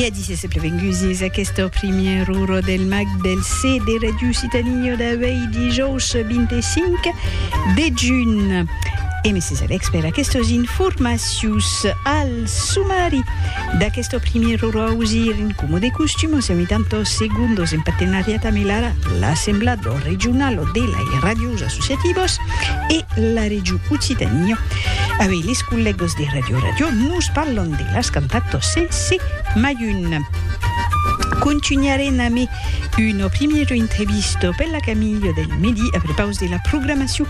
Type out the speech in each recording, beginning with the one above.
E a disse sempre vengusis aquesta primièra ora del mag del C de Radio Citanio d'avei dijòus 25 de junh. E Mrs. Alex per aquestes informacions al sumari d'aquesta primièra ora ausir en como de costum o semi tantos segundos en partenariat amb l'ARA, l'Assemblado Regionalo de lai Radios Associativos. e la region Occitània. Avei les collègos de Radio Radio nos parlon de las cantatos sense mai un. Contunharem amé una primièra entrevista per la Camilha del Medi a prepaus de la programacion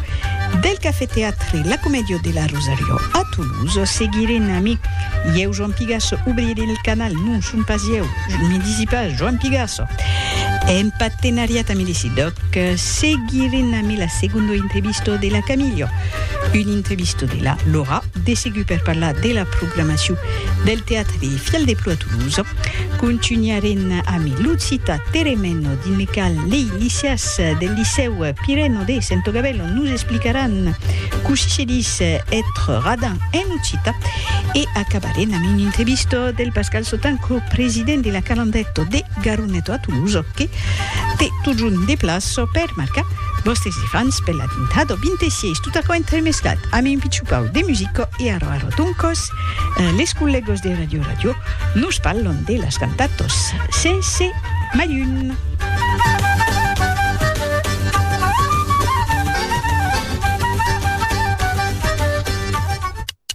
del Cafè Teatre La Comèdia de la Rosariò a Toulouse. Seguirem amé ieu Joan Pigasso, obrirem el canal, non son pas ieu, me disi pas, Joan Pigasso, en partenariat amé de Siddoc. Que seguirem amé la segondo entrevisto de la Camillo. Un entrevisto de la Laura, de segur per parlar de la programacion del teatre de Fial de Plo a Toulouse. Contunharem amé Lutzita Teremeno dins le cal lei liceas del licèu Pireno de Sento Gabello nos explicaràn cossí se dis ètre radin en occita. E acabarem amé un entrevisto del Pascal Sotanco, president de la Calandèto de. Garoneto a Toulouse o que te totjorn deplaço per marcar vòstes ifants per l'atentado 26 tot aquò entremesclat amb un pichupau de musico e arro arro toncos les collegos de Radio Radio nos parlon de las cantatos sense malhun.